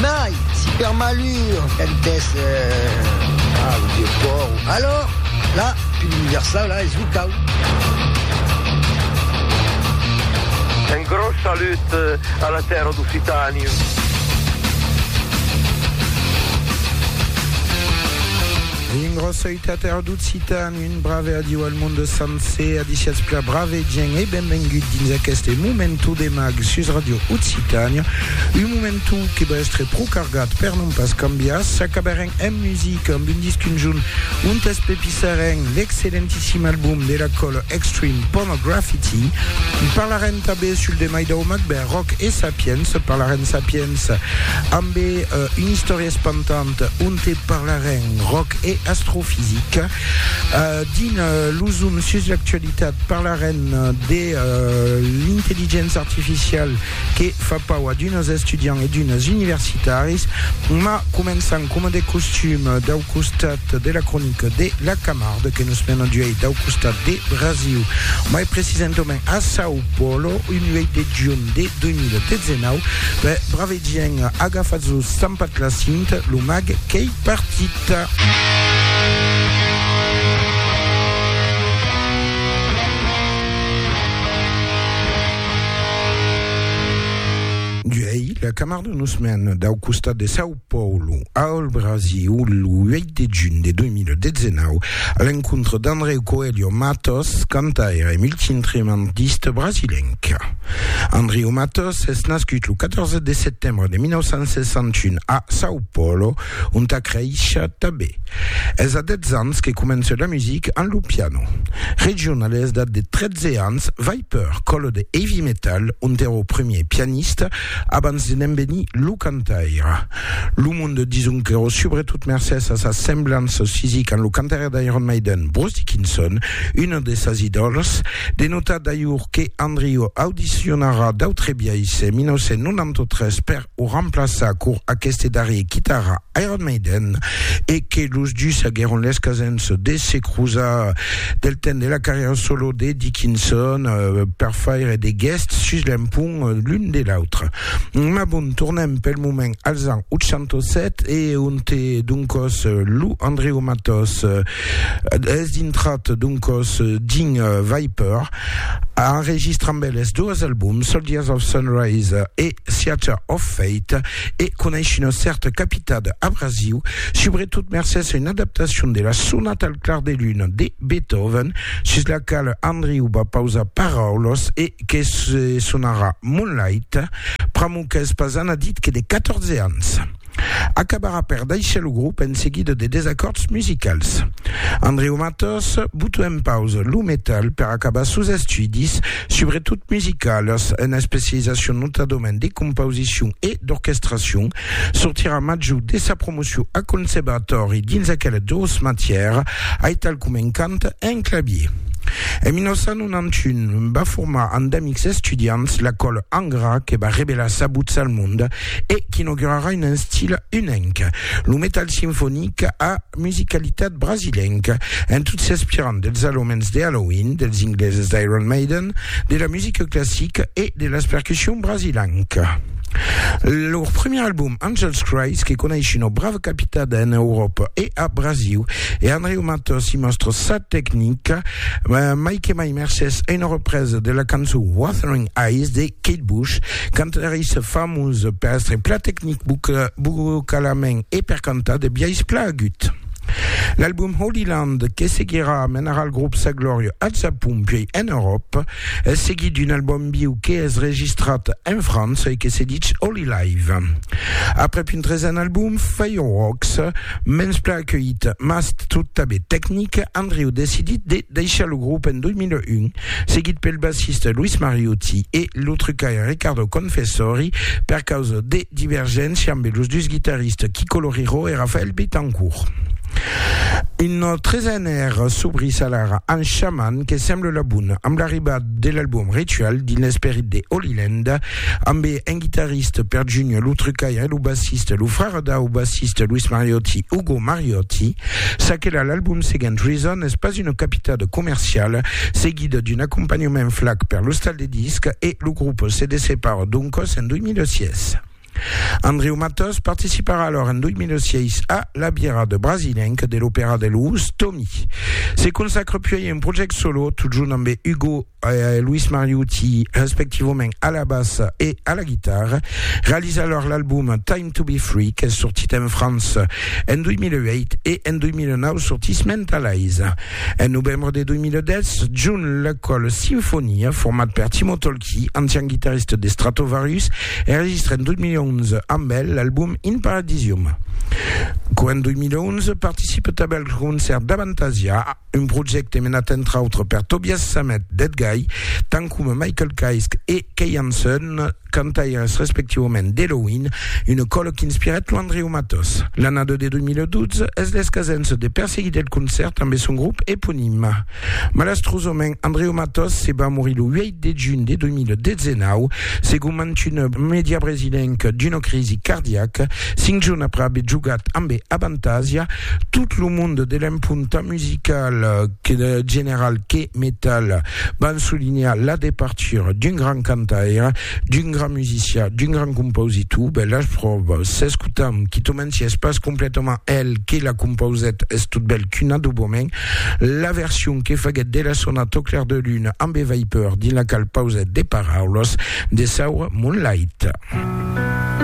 Mai, si per malur cantès a lo vieu còr, alòr, la pil universau, la es lo cau. Un gròs salut a la tèrra d'Occitània. Vien gròsa uta tèrra d'Occitània. Un brave adiu al monde sancer, adiciatz pla brave gent e benvengut dins aqueste momentu de mag sus Radio Occitània. Un momentu que va èstre pro cargat per non pas cambiar. S'acabarem en musica amb un disc conjunt ont espepissarem l'excellentissim album de la còla Extreme Pornograffiti. Parlarem tanben sul demai dau Macbeth Rock e Sapiens, parlarem Sapiens ambe una istòria espantanta, onte parlarem ròc e astrofisica. Dins lo zoom sus l'actualitat parlarem de l'intelligença artificial que fa pau a d'unes estudiants e d'unes universitaris, ma començam coma de costum dau costat de la cronica de la Camarde que nos mena d'uèi dau costat de Brasiu, mai precisentament a São Paulo, un 8 de junh de 2019. Gien, agafatz lo stampat la cint, lo mag qu'ei partit. D'uèi, la Camar de nos mèn dau costat de São Paulo al Brasiu, lo 8 de junh de 2019, a l'encontre d'Andreu Coelho Mattos, cantaire e multiinstrumentista brasilenc. Andriu Matos es nascut lo 14 de setembre de 1961 a São Paulo, ont a creishat tanben. Es a 10 ans que comença la musica amb lo piano. Region a l'esdat de 13 ans, Viper, còlo de heavy metal, ont èra o premier pianista abans de ne'n venir lo cantaire. Lo monde di Zuncchero, subretot mercés a sas semblanças fisica amb lo cantaire d'Iron Maiden Bruce Dickinson, una de sas idòls, de notar d'ailhur que Andrio audicionarà d'autre biais en 1993 per o remplaçar cor aqueste darrier quitara Iron Maiden e que los dus aguèron l'escasens de se crosar del temps de la carrièra solo de Dickinson per faire de guests sus l'empont l'un de l'autre. Mas bon, tornem pel moment als ans 807 e onte doncòs lo Andreu Matòs es dintrat doncòs dins Viper, enregistra amb eles doas albums, Soldiers of Sunrise e Theatre of Fate, e coneis una cèrta capitada abrasiu, subretot mercés a una adaptacion de la Sonata al clar de luna de Beethoven, sus la quala Andreu va pausar paraulas e que se sonarà Moonlight, pr'amor qu'es pas anadit que de 14 ans. Acabarà per daishar lo grop en seguida de desacòrds musicals. Andreu Matos buta en pausa lo metal per acabar sos estudis, subretot musicalas, ena especializacion notadament de compausicion e d'orquestracion, Sortirà major de sa promocion a conservatòri dins aquelas dos matièras, aital coma en cant e en clavier. En 1991, va formar amb d'amics estudiants la còla Angra que va revelar sa votz al mond e qu'inaugurarà un estil unenc, lo metal sinfonic a musicalitat brasilenca, en tot s'inspirant dels alomens de Halloween, dels ingleses d'Iron Maiden, de la musica classica e de las percussions brasilenca. Lor primièr album, Angels Cries, que coneis una brava capitada en Euròpa e a Brasiu, e Andreu Matos i mòstra sa tecnica, mai que mai mercés a una represa de la cançó Wuthering Eyes de Kate Bush, cantarissa famosa per èstre plan tecnic vocalament e per cantar de biais plan agut. L'album Holy Land, que seguirà menarà al grop sa glòria al Japon puèi en Euròpa. Es seguit d'un album en viu que es registrat en França e que se dich Holy Live. Aprèp un tresen album, Fireworks, mens plan acuelhit mas tot tanben tecnic, Andrew decidit de deishar lo grop en 2001. seguit pel bassista Luis Mariucci e lo trucaire Riccardo Confessori, per causa de divergéncia ambe los dus guitaristas Kiko Loureiro e Raphaël Bittencourt. Un tresen èr subris alara amb Shaman que sembla la bona, amb l'arribada de l'album Ritual dins l'esperit de Holy Land, Ambe un guitarriste, Per Junior, lo trucaire e lo bassiste, lo frère dau bassiste Luis Mariotti, Ugo Mariotti, ça que la l'album seguent Reason es pas una capitada comerciala, seguida d'un acompanhament flac per l'ostal de discs e lo grup se dessepara doncòs en 2006. Andreu Matòs participarà alors en 2006 a La Bièrra de Brasilenc de l'Opèra de Lous, Tomi se consacra puèi a un project solo totjorn ambe Ugo Luis Mariucci respectivament a la bassa e a la guitarra, realiza lor l'album Time to be Free qu'es sortit en França en 2008 e en 2009 sortís Mentalize. En novembre de 2010, June L'Ecol Sinfonia, format per Timo Tolkki, ancian guitarrista de Stratovarius, enregistra en 2011 amb el l'album In Paradisium. Qu'en 2011 participa tanben al concèrt d'Avantasia, Un projècte menat entre autres per Tobias Sammet, Dead Guy, tant coma Michael Kaisk e Kay Hansen, cantaires respectivament d'Helloween, una còla qu'inspirèt lo Andreu Matos. L'annada de 2012 es l'escasença de perseguir del concèrt ambe son grop eponim. Malastrosament, Andreu Matos se va morir lo 8 de junh de 2019, segon mantuna media brasilenca, d'una crisi cardiaca. Cinc jorns après aver jogat ambe avantatja tot lo monde de l'emponta musical que general que metal, van solinhar la departura d'un grand cantaire, d'un grand musician, d'un grand compositor. Ben las pròvas s'escotam, quitament si es pas completament el que la compausèt, es totbèl qu'un adoboment. La version que faguèt de la sona Tot clair de lune ambe Viper dins la qual pausèt de paraulas de saura Moonlight.